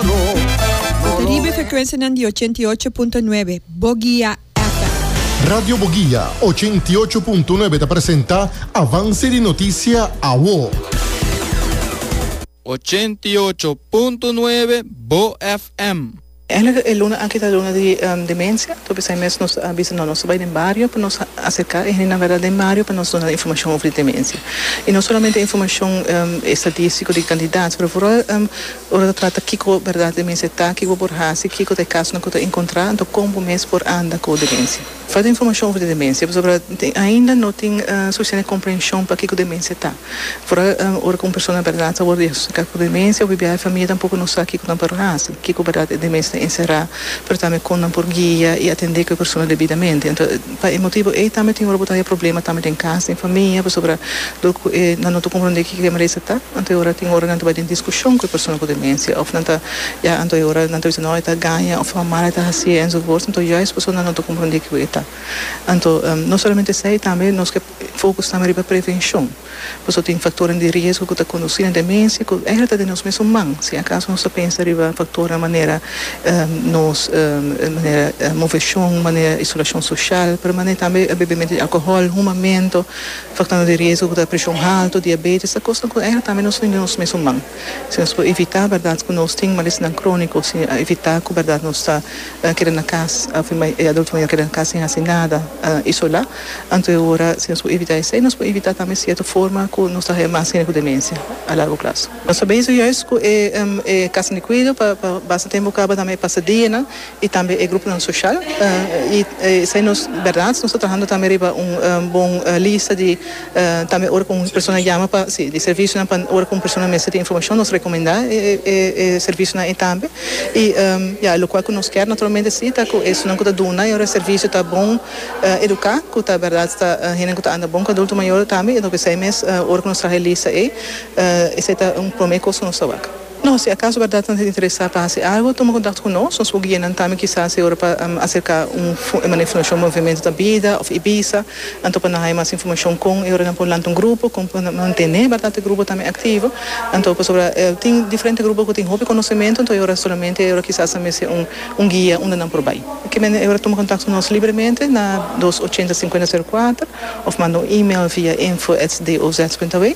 Bo ta riba e frekuensianan di ochenta i ocho punto nuebe Bogia FM. Radio Bogia ochenta i ocho punto nuebe ta presenta Avance di Noticia Awo. Ochenta i ocho punto nuebe Bo FM. Eigenlijk e luna aki ta luna di demencia, tur p'esei mes nos a bisa no nos ta bai den bario pa nos acerca e hendenan verda den bario pa nos duna'e informacion over di demencia. Y no solamente informacion estadístico di cantidad pero vooral Ora ta trata kiko bèrdat di mens e ta, kiko por hasi, kiko ta e kasonan ku ta enkontrá, anto kon bo mes por anda ku demensia. Falta informashon over di demensia pasobra ainda no tin sufisiente komprenshon pa kiko demensia ta. Afora ora ku un persona bèrdat ta wòrdu diagnostika ku demensia, biaha e famia tampoko no sa kiko nan por hasi, kiko bèrdat e demensia ta enserá, pero tambe kon nan por guia i atendé ku e persona debidamente. Pa e motibu ei tambe tin ora bo ta haya problema tambe den kas, den famia, pasobra dor ku e nan no ta komprondé kiko e merese ta, anto e ora tin ora nan ta bai den diskushon ku e persona ku demensia òf nan ta ya anto e ora nan ta bisa no e ta gaña òf tabata mal e ta hasié enzovoorts anto juist pasobra nan no ta komprondé kiko e ta. Anto no solamente esei tambe nos ke fokus tambe riba prevenshon. Pasobra tin faktornan di riesgo ku ta kondusí na demensia ku ègera ta den nos mesun man si akaso nos ta pensa riba faktornan manera nos manera moveshon, manera isolashon soshal, pero manera tambe bebementu di alkohòl, humamentu, faktornan di riesgo ku ta preshon haltu, diabetes, ta kosnan ku ègera tambe nos tin den nos mesun man. Si nos por evitá bèrdat ku nos tin malesnan króniko, si evitá ku bèrdat nos ta. a keda na cas, a firma e adulto nan ya keda na cas sin haci nada, a isola, anto e ora si nos por evita esey, nos por evita tambe cierto forma cu nos ta haya mas hende cu demencia a largo plazo. Nos ta bezig juist cu e e casanan di cuido pa pa basta tempo caba tambe e pasadianan y tambe e gruponan social y esey nos berdad nos ta trahando tambe riba un bon lista di. Tambe ora ku un persona yama pa si di servisionan pa ora ku un persona mester di informashon nos rekomendá e servisionan ei tambe. I ya lokual ku nos kèr naturalmente si ta ku esunnan ku ta duna yora servisio ta bon eduká ku ta bèrdat ta hende ku ta anda bon ku adulto mayor tambe. Enton p'esei mes ora ku nos traha e lista ei esei ta un promé kos ku nos ta wak. No, si acaso berdad nan ta interesa pa haci algo, tuma contact cu nos. Nos por guia nan tambe kisas e ora pa acerca un manera informacion Movimiento ta bida of Ibiza. Anto pa nan haya mas informacion con e ora nan por lanta un grupo, con pa nan mantene berdad e grupo tambe activo. Anto pasobra tin diferente grupo cu tin hopi conocemento, anto e ora solamente e ora kisas nan mester un guia unda nan por bay. Por kimen e ora tuma contact cu nos libremente na dos ochenta cincuenta zero cuater of manda un email via info@doz.aw.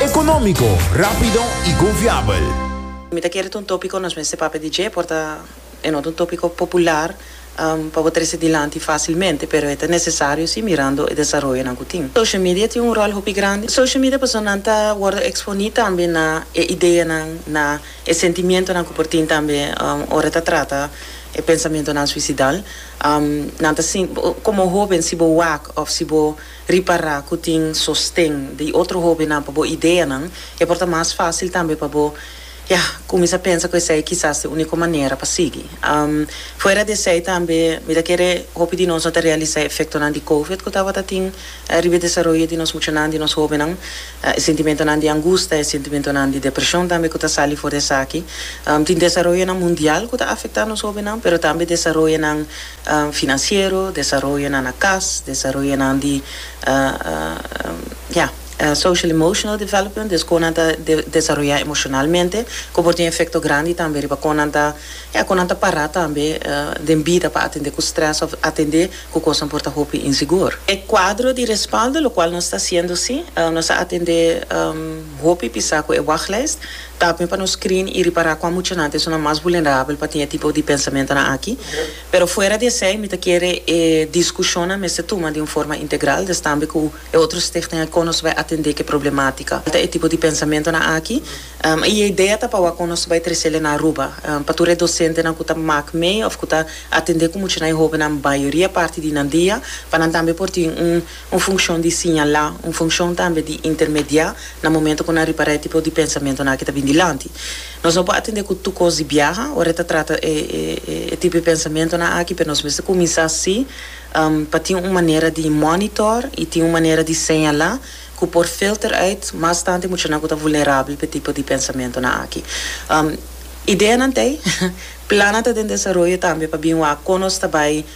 Económico, rápido y confiabel. Mi ta kere ta un tópiko nos mester papia di dje por ta e no ta un tópiko popular pa bo trese dilanti fásilmente pero e ta nesesario sí mirando e desaroyonan ku tin. Social media tin un ròl hopi grandi. Social media personanan ta wòrdu eksponí tambe na e ideanan, na e sentimientonan ku por tin tambe ora e ta trata e pensamentonan suisidal. Nan ta sinti, komo hóben si bo wak òf si bo. Ripará ku tin sosten di otro hóbennan pa bo ideanan, i por ta mas fásil tambe pa bo, ya, kuminsá pensa ku esei kisas e úniko manera pa sigui. Fuera di esei tambe, mi ta kere hopi di nos no ta realisá e efektonan di Covid ku tabata tin riba e desaroyo di nos muchanan, di nos hóbennan, e sentimentonan di angusta, e sentimentonan di depreshon tambe ku ta sali for di esaki. Tin desaroyonan mundial ku ta afektá nos hóbennan, pero tambe desaroyonan. Finansiero, desaroyonan na kas, desaroyonan di ya, social emotional development, des kon nan ta desaroyá emoshonalmente, ku por tin efekto grandi tambe riba kon nan ta, ya, kon nan ta pará tambe den bida pa atendé ku strès òf atendé ku kosnan por ta hopi insigur. E kuadro di respaldo, lokual nos ta hasiendo sí, nos a atendé hopi pisá ku e wachlijst. Ta awe pa nos screen y ripara cuan muchanan esun nan mas vulnerabel pa tin e tipo di pensamentonan aki. Pero fuera di esey mi ta kere e discusionnan mester tuma di un forma integral destambe cu e otro Stichtinga con nos bay atende cu e problematica. Ta e tipo di pensamentonan aki y e idea ta pa awor con nos bay trecele na Aruba. Pa tur e docentenan cu ta maak mee of cu ta atende cu muchanan y hobennan mayoria parti di nan dia pa nan tambe por tin un un funshon di siñalá, un funshon tambe di intermediá na momentu ku nan ripará e tipo di pensamentunan aki ta bin dilanti. Nos no por atendé ku tur kos di biaha ora e ta trata e tipo di pensamentunan aki, pero nos mester kuminsá sí pa tin un manera di mònitor i tin un manera di señalá ku por filter uit mas tanti muchanan ku ta vulnerabel pa e tipo di pensamentunan aki. Ideanan t'ei, plannan ta den desaroyo tambe pa bin wak kon nos ta bai.